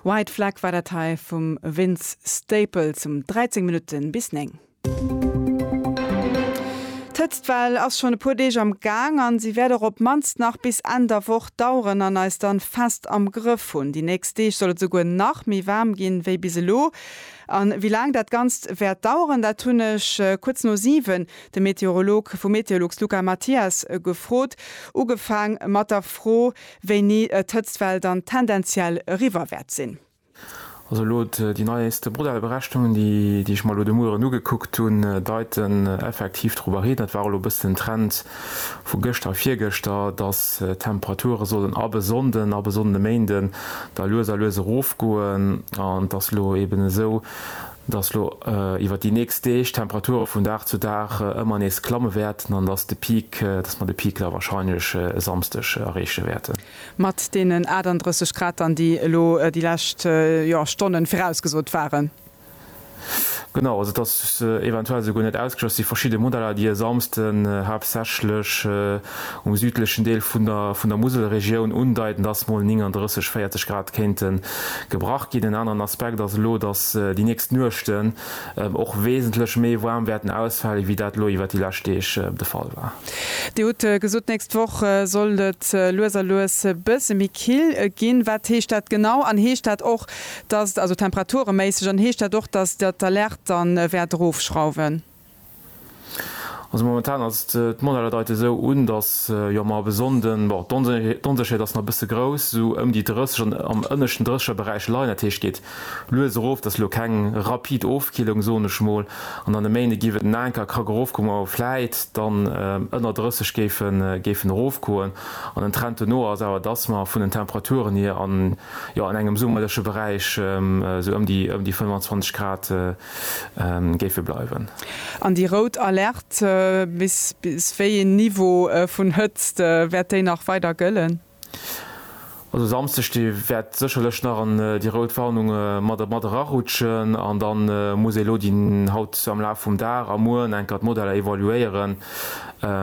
White Flag war dat hei vum Vince Staples um 13 Minutte bis 9. D'Hëtztwell ass schonn e puer Deeg am Gaang an si wäert och op d'mannst nach bis Enn der Woch daueren an eis dann fest am Grëff hunn. Déi nächst Deeg soll et esouguer nach méi waarm ginn wéi bis elo. An wéi laang dat Ganzt wäert daueren, dat hunn ech kuerz no 7 de Meteorolog vu Meteolux Luca Mathias gefrot. Ugefaang mat der Fro, Wéini d'Hëtztwell dann tendenziell eriwwer wäert sinn. Also elo déi neieste Modellberechnungen, déi ech mer elo de Mueren ugekuckt hunn, deiten effektiv dorobber hin, dat war elo e bëssen den Trend vu gëschter a virgëschter, dass d'Temperature sollen ab e Sonnden, ab e Sonnden e Méinden da lues a lues erofgoen an et ass elo eben esou, dass lo iwwert déi nächst Deeg d'Temperature vun Dag zu Dag ëmmer nees klamme wäerten an dass de Peak, dass mer de Peak la wahrscheinlech e Samsdeg erreeche wäerten. Mat deenen 38 Grad dann, déi elo déi lescht, jo, Stonnen virausgesot waren. Genau, also et ass eventuell esouguer net ausgeschloss, et si verschidde Modeller, déi e Samsden haaptsächlech. um südlechen Deel vun der vun der Muselregioun undeiten, dass mol 39, 40 Grad kéinte gebrach ginn. En aneren Aspekt ass elo, dass déi nächst Nuechten och wesentlech méi waarm wäerten ausfale wéi dat elo iwwert déi lescht Deeg de Fall war. Dir hutt gesot, d'nächst Woch soll et lues a lues e bësse méi kill ginn. Wat heescht dat genau? An heescht dat och, dass, also temperature-méisseg, an heescht dat och, dass Der d'Alerte dann wäert erofschrauwen? Also momentan ass et, d'Modeller deite sou un, datt jo mer op e Sonnden, bon d'Onsécherheet ass nach e bësse grouss, esou ëm déi 30, an am ënneschten 30er Beräich leien. Dat heescht geet lues erof, dat ass elo keng rapid Ofkillung, soen ech mol, an dann e Méinde géif et en anker Krack erofgoen, wou mer vläit dann ënner 30 géifen erofgoen. An den Trend dono ass awer, datt mer vun den Temperaturen hier an engem summerleche Beräich, esou ëm déi 25 Grad, géife bleiwen. An déi rout Alerte, bis wéi een Niveau vun Hëtzt wäert déi nach weider gëllen? Also Samsdeg de wäert sécherlech nach an déi rout Warnung mat erarutschen an da muss ee elo déi haut am Laf vum Dag a mueren enker d'Modeller evaluéieren,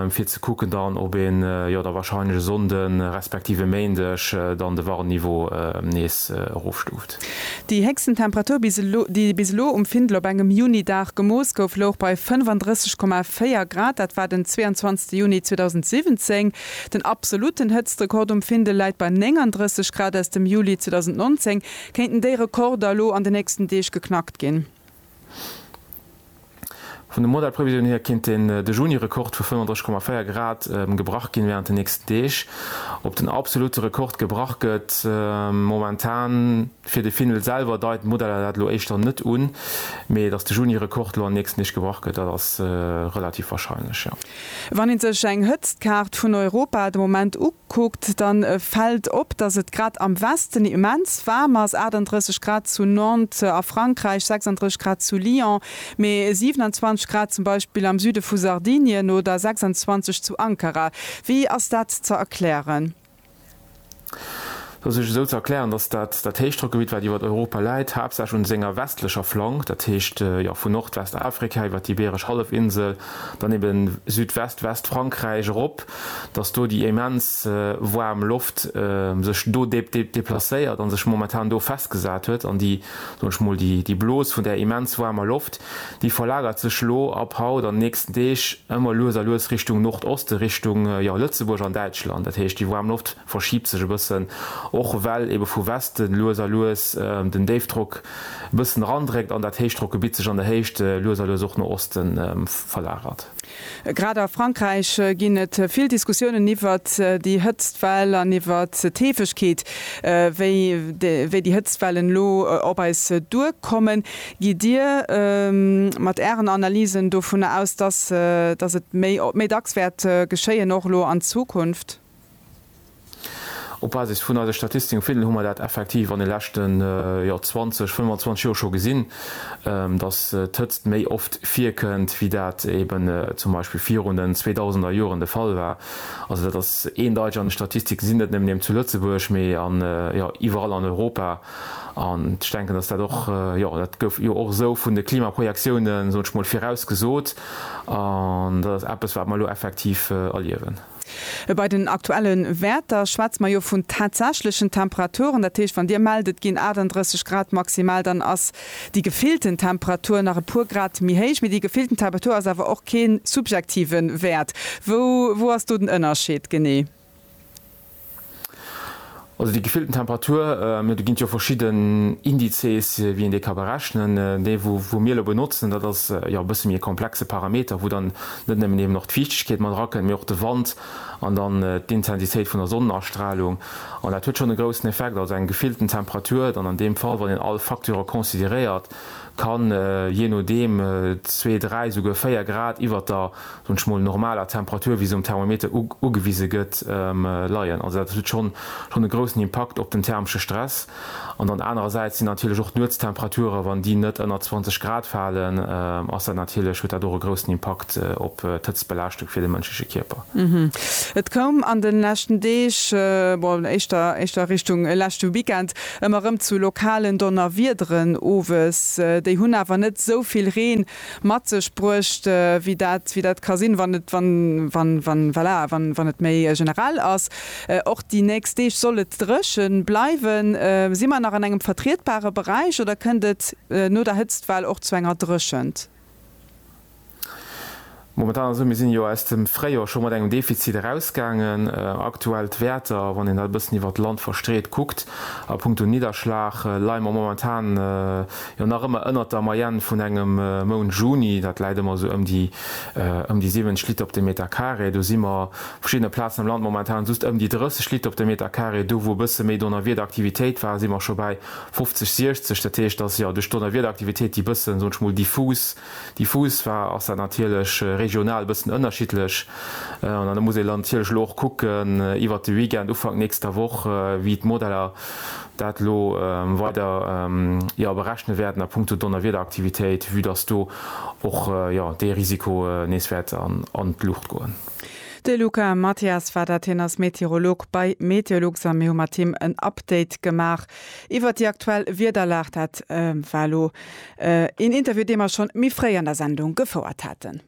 fir ze kucken dann, ob een jo da warscheinlech e Sonnde respektiv e Méindeg dann de Warnniveau nees erofstuuft. August. Déi héchsten Temperatur, bis elo, déi bis elo um Findel op engem Juni-Dag gemooss gouf, louch bei 35,4 Grad. Dat war den 22. Juni 2017. Den absolutten Hëtztrekord um Findel läit bei 39 Grad aus dem Juli 2019. Kéinten déi Rekorder elo an de nächsten Deeg geknackt ginn? Vun de Modellprevisioune hier kéint den de Juni-Rekord vu 35,4 Grad gebrach ginn wärend den nächsten Deeg. Ob den absolutte Rekord gebrach gëtt momentan fir de Finnel selwer deiten d'Modeller dat elo éischter net un, mee datt de Juni-Rekord elo an den nächsten Deeg gebrach gëtt, dat ass relativ warscheinlech, jo. Wann ee sech eng Hëtztkaart vun Europa de Moment ukuckt, da fält op, datt et grad am Westen immens waarm ass, 38 Grad zu Nantes a Frankräich, 36 Grad zu Lyon, mee 27 Grad zum Beispill am Süde vu Sardinien oder 26 zu Ankara. Wéi ass dat ze erklären? Dat ass sech esou ze erklären, datt dat dat Héichdrockgebitt, wat iwwert Europa läit, haaptsächlech un senger westlecher Flank, dat heescht jo vun Nordwestafrika iwwert d'Ibeeresch Hallefinsel, dann eben Südwest-Westfrankräich erop, datt do déi immens waarm Loft sech do deplacéiert a sech momentan do festgesat huet an déi, soen ech mol, déi Blos vun där immens waarmer Loft, Déi verlagert sech elo ab haut an nächsten Deeg ëmmer lues a lues Richtung Nordoste, Richtung, jo, Lëtzebuerg an Däitschland. Dat heescht, déi waarm Loft verschiebt sech e bëssen, och well ebe vu Westen lues a lues den Déifdrock e bëssen erandréckt an dat Héichdrockgebitt sech an der Héicht lues a lues och no Osten verlagert. Grad a Frankräich ginn et vill Diskussiounen iwwert déi Hëtztwell an iwwert d'Heefegkeet, wéi déi Hëtztwellen elo op eis duerkommen. Gitt Dir mat Ären Analysen dovunner aus, dass et méi dacks wäert geschéien, och elo an Zukunft? Op Basis vun eise Statistiken hu mer dat effektiv an de leschten 20, 25 Joer scho gesinn, dass d'Hëtzt méi oft virkënnt, wéi dat eeben zum Beispill virun den zweedausender Joren de Fall war. Also dat ass eendeiteg an de Statistiken ze sinn, net nëmmen eben zu Lëtzebuerg, mee iwwerall an Europa. An ech denken, dass dat och, jo dat gouf jo och esou vun de Klimaprojektiounen, soen ech mol, virausgesot. An dat ass eppes, wat mer elo effektiv erliewen. Bei den aktuelle Wäerter schwätze mer jo vun tatsächlechen Temperaturen. Dat heescht, wann Dir mellt, et ginn 38 Grad maximal, dann ass déi gefillten Temperatur nach e puer Grad méi héich. Mee déi gefillten Temperatur ass awer och kee subjektive Wäert. Wou ass do den Ënnerscheed genee? Also déi gefillten Temperatur, do ginn et jo verschidden Indizes, wéi een déi ka berechnen. Dee wou mir elo benotzen, dat ass jo e bësse méi e komplexe Parameter, wou dann net nëmmen eben och d'Fiichtegkeet mat erakënnt, mee och de Wand an dann d'Intensitéit vun der Sonnenastralung. An dat huet schonn e groussen Effekt. Also eng gefillten Temperatur dann an deem Fall, wann een all Facteure consideréiert, kann jee nodeem zwee, dräi, souguer véier Grad iwwert der soen ech mol, normaler Temperatur, wéi se um Thermometer ugewise gëtt, leien. Also dat huet schonn schonn e groussen Impakt op den thermesche Stress. An dann anerersäits sinn natierlech och d'Nuetstemperaturen, wann déi net ënner 20 Grad falen, ass dat natierlech, huet dat och e groussen Impakt op d'Hëtztbelaaschtung fir de mënschleche Kierper. Et koum an de leschten Deeg, bon éischter éischter Richtung leschte Weekend, ëmmer erëm zu lokalen Donnerwiederen owes. Déi hunn awer net esou vill Reen mat sech bruecht, wéi dat, wéi dat ka sinn, wann et, wann, wann, wann, voilà, wann, wann et méi generell ass. Och déi nächst Deeg soll et dréche bleiwen. Si mer nach an engem vertrietbare Beräich oder kënnt et no der Hëtztwell och zu enger Dréchent? Momentan ass et esou, mir sinn jo aus dem Fréijor scho mat engem Defizit erausgaangen. Aktuell d'Wäerter, wann een dat e bëssen iwwert d'Land verstreet kuckt, a punkto Nidderschlag leie mer momentan jo nach ëmmer ënnert der Moyenne vun engem Mount Juni. Dat läit ëmmer esou ëm déi ëm déi 70 Liter op de Meter carré. Do si mer op verschiddene Plazen am Land momentan just ëm déi 30 Liter op de Meter carré. Do wou e bësse méi Donnerwiederaktivitéit war, si mer scho bäi 50, 60. Dat heescht, dass jo duerch d'Donnerwiederaktivitéit déi bëssen, soen ech mol, diffus, Déi Fuusfaa ass da natierlech regional e bëssen ënnerschiddlech. An da muss ee lantierlech elo och kucken iwwert de Weekend, Ufank nächster Woch, wéi d'Modeller dat elo weider, jo, berechne wäerten a punkto Donnerwiederaktivitéit, vue dass do och, jo, dee Risiko nees wäert an d'Luucht goen. De Luca Mathias war dat. Hien ass Meteorolog bei Meteolux a mir hu mat him en Update gemaach iwwert déi aktuell Wiederlag. Dat war elo Een Interview, dee mer schonn méi fréi an der Sendung gefouert haten.